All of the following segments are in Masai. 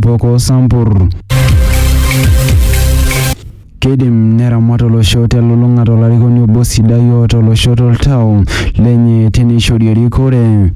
Boko Sampur. Keidim neramat olosho telulung'ata olarikoni obo sidai oota olosho toltau lenye teneishori erikore.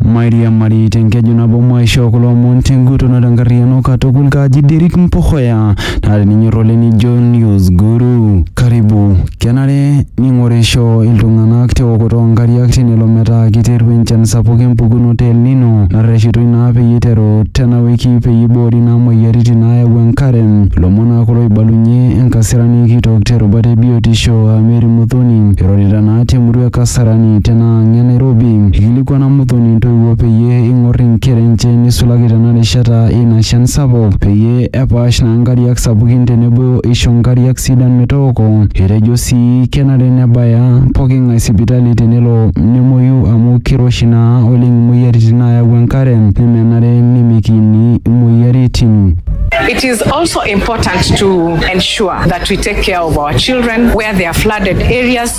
Mairiamari tenkeju nabo maishoo kulo omon tenguton o tenkarriyiano katukul kaji Derrick Mpohoya naa teninyor oleng nijo news guru karibu kenare ning'orisho iltung'anak teokoto oonkariak tenelo metaa keiterua enchan sapuk empukunoto e El Nino narreshitoi naa peyie eiteru tena wiki peyie eiboori naa moyiaritin naayau enkare ilomon naa kulo oibalunye enkasirani kitok terubata e biotisho aa Mary Muthoni eirorita naa temurua e Kasarani tena ang e Nairobi eikilikuana Muthoni intoiwuo peyie eing'or inkera enche neisulaki tena rishata eina shan sapuk peyie epaash naa nkariak sapukin tenebo eisho nkariak sidan metooko. Etejo sii kenare nebaya poking'ae sipitali tenelo nemuoyu amu keiroshi naa oleng imoyiaritin naayau enkare nemenare nemikiini imoyiaritin. It is also important to ensure that we take care of our children where there are flooded areas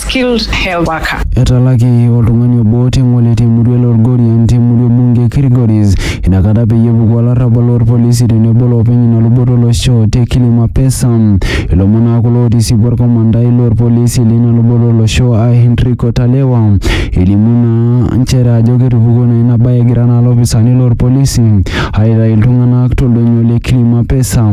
skilled health worker. Etalaki oltung'ani obo te Ng'ole te murua e Lorgorian te murua e bunge e Kilgoris ina kata peyie epuku olarrabal loo lpolisi tenebo loopeny ina luboto olosho te Kilima Pesa. Ilomon naa kulo ootisipua olkomandai loo lpolisi leina luboto olosho aa Henrico Talewa elimu naa nchere ajo ketupukuo naa ina bae egira naa lopisaani loo lpolisi aaitayu iltung'anak to ldonyo le Kilima Pesa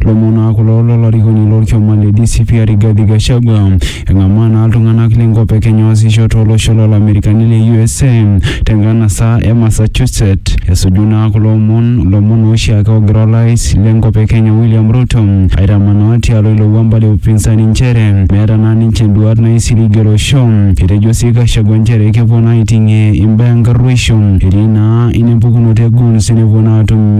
Lomon naa kulo lo larikoni lo lkioma le DCP aa Rigathi Gachagua. Eng'amaa naa ltung'anak le nkop e Kenya oasisho to losho lo lamerikani le usa te nkanasa e Massachusetts. Esuju naa kulo omon lomon oshiake ogira olais le nkop e Kenya William Ruto aitamanaa tialo ilo wuamba le upinsani nchere meeta naa ninche nduaat naisiligie olosho. Etejo sii Gachagua nchere kepuo naa aiting'ie imbaa enkarruoisho etii naa ina empukunoto e guns nepuo naa atum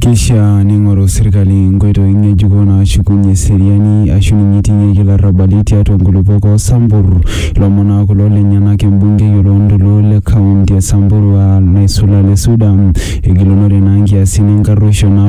Keishaa neing'oru serkali nkoitoi ng'ejuko naashukunye eseriani aashu ninye eiting'ieki larrabali tiatua nkulupuok oo Sambur. Ilomon naa kulo lenyenak embungei o loo ntoluo le kaunti e Samburu aa Naisula Lesuda egilunore naa nkiasin enkarruoisho naaku